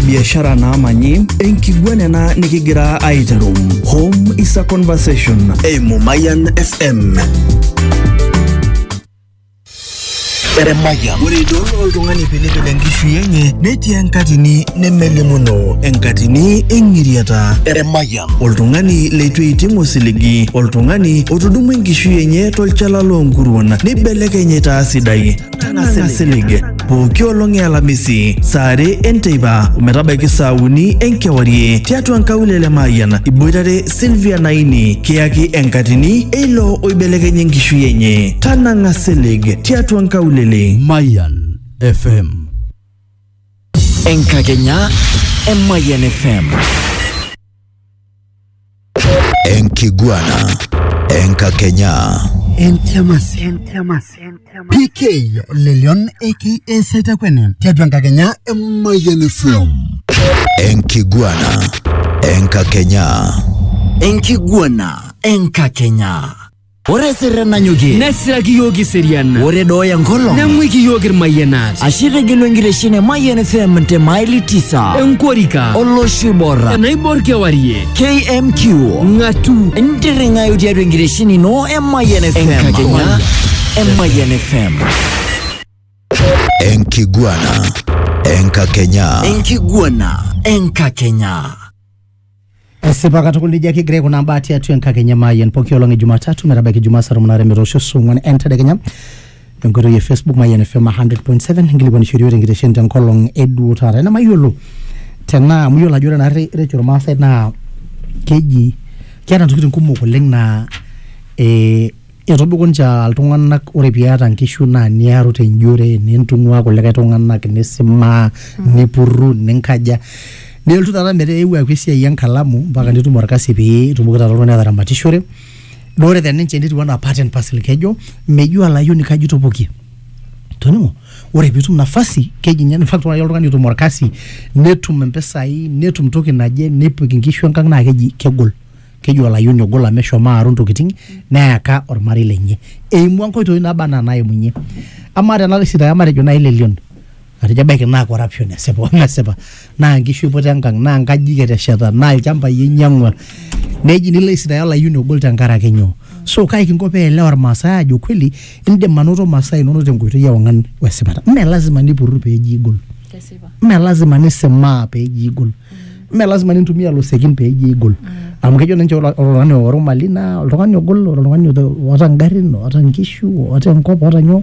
biashara naamanyi, enkiguana ena nikigira aiteru. Home is a conversation eimu Mayan FM. Ore idol oltung'ani pilipil enkishui enye netii enkatini nemelimuno, enkatini eng'iriata. Oltung'ani leitu eiting osiligi, oltung'ani otudumua enkishui enye tolchala loonkuruon neibelekeny aitaa sidai. Tang'asa ilig. pooki olong e alamisi saa are enteipa ometabaiki saa uni enkewarie tiatua nkaulele Mayian iboitare Sylvia Naini kiyaki enkatini eilo oibelekenye enkishui enye tanang'a silig tiatua nkaulele Mayan FM. Enkakenya e Mayan FM. Enkiguana. Enkakenya. Entiamas. Entiamas. PK Lelion aka Saitakwene tiatua enkakenya e Mayian FM. Enkiguana. Enkakenya. Enkiguana enkakenya. Ore sirre nanyokie. Nesiraki iyiook eseriana. Ore dooya enkolong. Neng'uiki iyiook irmayianat. Ashe itegelu enkitesheni e Mayian FM te maili tisa. Enkorika. Olosho oibor. Enaibor kewarie. KMQ. Ng'atu. Ntirring'ayu tiatua enkitesheni ino e Mayian FM. Enkakenya e Mayian FM. Enkiguana. Enkakenya. Enkiguana. Enkakenya. Esipa katukul nejia kigira aikunaa mbaa tiatua enkakenya Mayian pooki olong e Jumatatu metabaiki Jumaa saa tomon aare metoosho saa ong'wan entedekenya tenkoitoi e Facebook Mayian FM 100.7 inkilikuanishori iyiook tenkitesheni tenkolong e duo taata. Ena mayiolo tenaa amu iyiolo ajo ore naarri recho irmaasai naa keji keeta ntokitin kumok oleng naa eh Etobiko ninche aa iltung'anak ore piata nkishu naa niaru tenjore nintung'ua kulikae tung'anak nisimaa nipurru ninkaja nelotu taata metaa eewuo aaku esiai enkalamu mpaka nitum orkasi pee itumoki taata oltung'ani ataramatishore naa ore te ninche netiu enaa part and parcel kejo mejo olayioni kaji itopokie toning'o ore piitum nafasi keji inye in fact ore ake oltung'ani otum orkasi netum impisai netum toki naje nepik inkishu enkang naa keji kegol. keji olayioni ogo lame shomo aaru ntokitin neyaka ormarei lenye eimua nkoitoi naba anaa naimunye amaa tena rishit aya matejo naaji lelion atejo ebaiki naa corruption esipa omesipa naa nkishu iputa enkang naa nkajijik etesheta naa ilchambai einyiang'ua neji nilo aisitaaya olayioni ogol tenkaraki nyoo so kai kinko peelewa irmaasay aajo kweli indim anoto masaa inonok tenkoitoi ewang'an wesipata mme lazima nipurru peeji igol kesipa mme lazima nisimaa peeji igol mme lazima nintumia losekin pee ijo igol amu kejo ninche ore oltung'ani oworu mali naa oltung'ani ogol ore oltung'ani oota ingarrin oota inkishu oota enkop oota nyoo